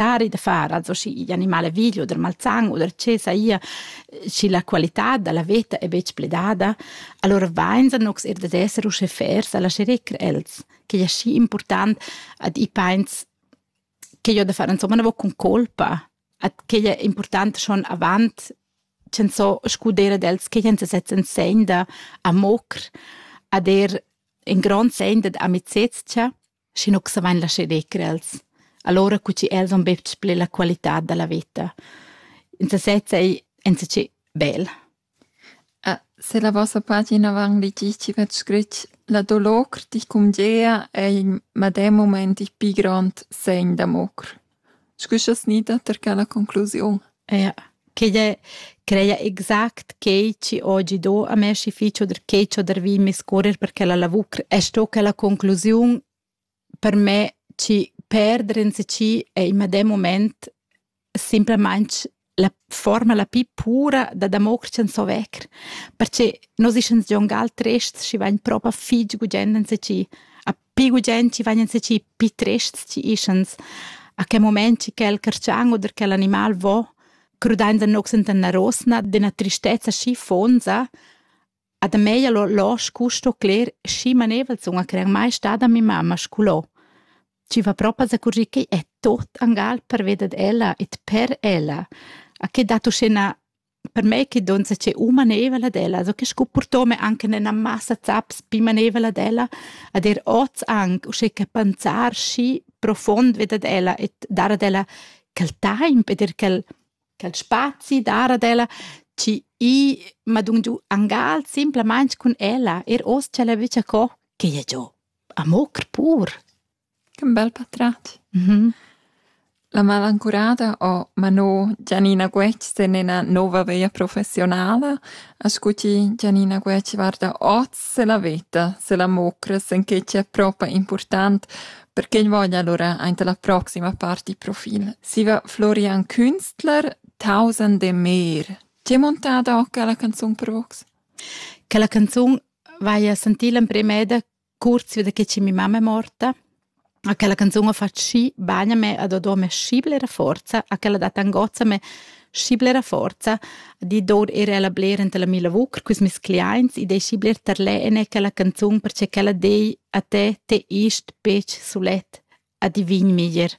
necessari da far also schi animale video der malzan oder che saia schi la qualità della veta è betg pledada allora vain san nox er da esser usche fers alla scherecr els che è schi important ad i pains che io da fare insomma una con colpa at che è important schon avant cen so scudere dels che jens setzen segn da a mocr a der in grand segn da amicezia Schi nu savain lascher decrer els. Alura cu chi els han betg pli la qualità da la veta. In sasezza ei insatgi bel. Ah, se la vossa pagina van litisci vet scrit La dolor dich cum Gea ei in medem moment il pi grand segn d'amor. Scu scha's gnida tar quella conclusiun? Eir chi'd è creia exact quai chi ho gi do a me schi fich o der che chi ho dervì in discurrer per quella lavur. E sto quella conclusiun per me chi perder ins chi è in medem mumaint simplamaing la forma la pli pura da damoctschan so vecker, perche nos ischans gion gal trests chi vagn propa fich gugent enseci, a pi gugent chi vagn enseci pi trests chi ischans, a che moment chi quel carchan oder quel animal vo, crudainsa nox enta üna rosna d'üna tristezza schi fonza, A da mei ha losch custo cler schi manevel zun a crer mai stada mia mamma scolò. Chi va propa zacurgir ch'ei è tot angal pervia dad ella e per ella. A che dat uschè na per me che donza c'è u manevel ad ella, so che sco purtome anche nella massa zaps pi manevel ad ella, ad er oz anc uschè che panzar schi profond ved ad ella e dar ad ella quel taimp ed er quel quel spazi dar ad ella chi i m'ha dun giu angal simplamaing cun ella er hoz cha l'he vist co che ia giò a mocher pur. Che bel patrat. Mhm. La malancurada o Manò Gianina Guetg ten ina nova veia professionala, a scuti Gianina Guetg varda oz se la veta, se la mocra, sen che c'è propa important Perché ün voglia alura aint la proxima part il profil. Siva Florian Künstler, Tausend e mer. Ti hai montado quella canzun per vox? Quella canzun vaia sentì l'emprima eda kurz wieder che ci mi mamma è morta. A quella canzun ho fatto sci bagna me ad odò me scibla era forza, a quella data angozza me schi blera forza di dor era la bler enta la mila vucr cus mes cliaints e dei schi bler tarlene che la canzun perche che la dei a te te ist pec sulet a divin miger